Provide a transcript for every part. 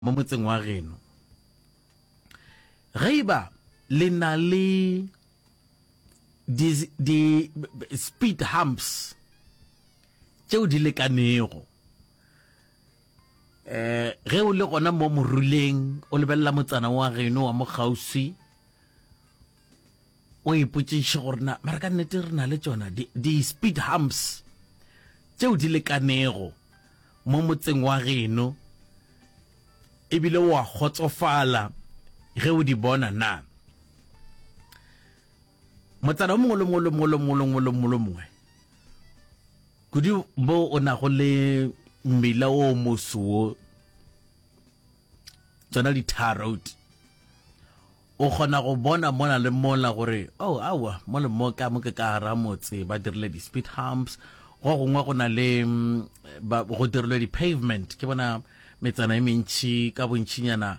mo motseng wa geno. Ge eba le na le di, di speed humps tšeo di lekanego, eh ge o le gona mo moruleng o lebelela motsana wa geno wa mo kgauswi O ipotšiše gore na mara ka nnete re na le tšona di-speed humps tšeo di lekanego mo motseng wa geno ebile wa kgotsofala ge o di bona na? Motsana o mongwe le mongwe le mongwe le mongwe le mongwe le mongwe le mongwe kudu mo o nago le mmila o mosoo tsona di-tar road o kgona go bona mona le mola gore oh awa mo le mo ka mo ke ka gara motse ba dirile di-speed humps go gongwe go na le mm, go dirilwe di-pavement ke bona metsana e mentšhi ka bontšhinyana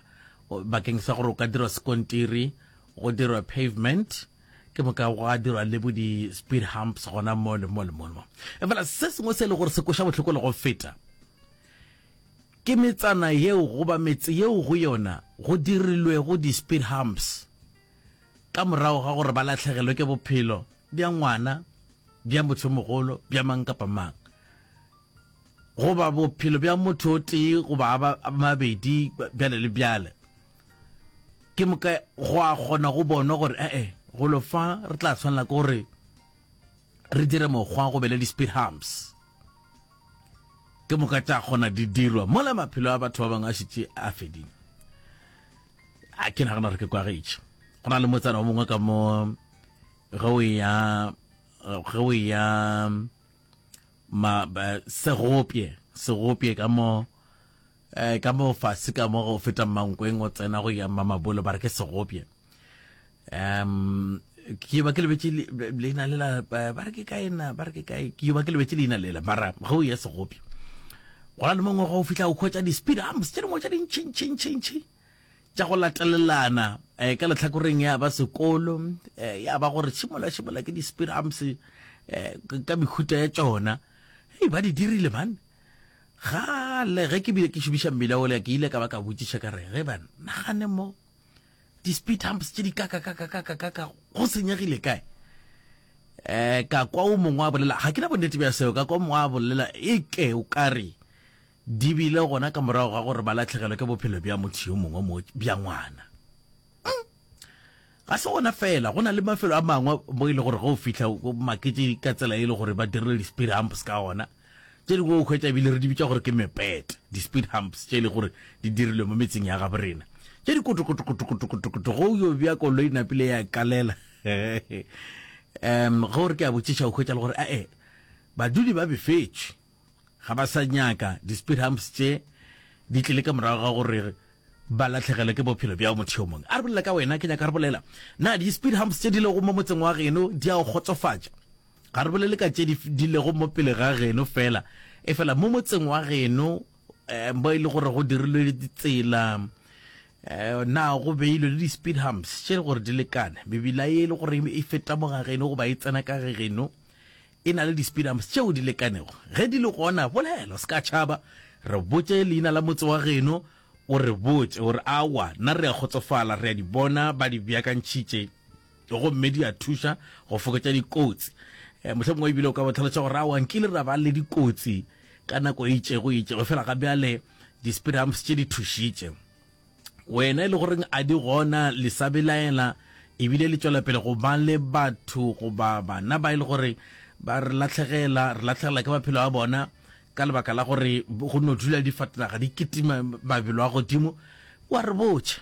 bakeng sa gore o ka dirwa sekontiri go dirwa pavement ke moka go a dirwa le bo di-speed humps gona mo le mo le mo le mo efela se sengwe se e le gore se koša botlhoko le go feta Ke metsana yeo goba metse yeo go yona go dirilwego di-speed humps ka morago ga gore ba lahlegelwe ke bophelo bja ngwana, bja mothomogolo, bja mang kapa mang, goba bophelo bja motho o tee goba a ba mabedi, bjale le bjale. Ke moka go a kgona go bonwa gore ee, golo fa re tla swanela ke gore, Re dire mokgwa go be le di-speed humps. Ke moka tša kgona di dirwa mola maphelo a batho ba bangwe a šetše a fedile. A ke nagana gore ke kwagetše. Go na le motsana o mongwe ka mo ge o ya ge o ya ma segopye segopye ka mo eh, ka mo fase ka mo go feta mankweng o tsena go ya mamabolo ba re ke segopye um ke ba ke lebetse leina lela ba re ke kae na ba re ke kae ke ba ke lebetse leina lela mara ga o ye segopjo go na le mongwe go o fitlha o khwetsa di-speed arms tse dingwe tsa dintšhintšhintšhintšhi tša go latelelana um ka letlhakoreng ya ba sekolo um ya ba gore tshimola tshimola ke di-speed arms um ka mekhuta ya tsona e ba di dirile man gale ge ke bile ke šomiša mmila ole ke ile ka ba ka botšiša ka re ge ba nagane mo di speed humps tše di kakakakakakaka go senyegile kae um ka kwa o mongwe a bolela ga ke na bonnete bja seo ka kwa mongwe a bolela e ke o kare di bile gona ka morago ga gore ba latlhegelwe ke bophelo bja motho yo mongwe mo bja ngwana hmm. ga se gona fela go na le mafelo a mangwe mo e le gore go fitlha makete ka tsela e le gore ba dirile di-speed humps ka ona Tše dingwe o hwetša ebile re di bitša gore ke mepet, di-speed humps, tše e lego gore di dirilwe mo metseng ya gabo rena, tše di kotokotokotokotokotokoto ge o yo bea koloi e napile ya kalela. Ge o re ke a botšiša o hwetša le gore a-e badudi ba befetšwe, ga ba sa nyaka di-speed humps tše di tlile ka morago ga gore ba latlhegelwe ke bophelo bja motho yo mongwe. A re bolela ka wena, ke nyaka re bolela na di-speed humps tše di lego mo motseng wa geno di a o kgotsofatša? Ga re bolele ka tše di, di lego mo pele ga geno fela, efela mo motseng wa geno eh, mo e le gore go dirilwe ditsela eh, na go beilwe le di-speed humps tše gore di lekane mebila ye e le gore e feta mo ga geno goba e tsena ka ge geno e na le di-speed humps tšeo di lekanego ge di le gona bolelo se ka tšhaba re botše leina la motse wa geno o re botše gore awa nna re a kgotsofala re a di bona ba di beakantšhitše gomme di a thuša go fokotša dikotsi um mohlhe mongwe ebile o ka botlhalosa gore awa nkile ra ba le dikotsi ka nako e itšego e itšego fela ga bjale di-speedhumps tše di thušitše wena e le goreng a di gona le sa belaela ebile le tšwela pele go ba le batho goba bana ba e le gore ba re latlhegela re latlhegela ke maphelo a bona ka lebaka la gore go no dula difatanaga di kitima mabelo a godimo wa re botšha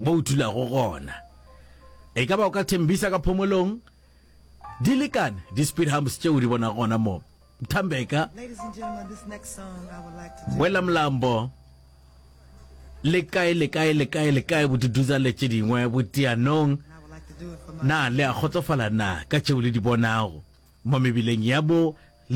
Mo o dulago gona. E ka ba o ka Tembisa ka phomolong? Di lekane, di-speed humps tšeo di bonago gona mo. Thambeka. Wela mlambo. Le kae, le kae, le kae, le kae, boduduza le tše dingwe, botianong. Na le a kgotsofala na ka tšeo le di bonago mo mebileng ya bo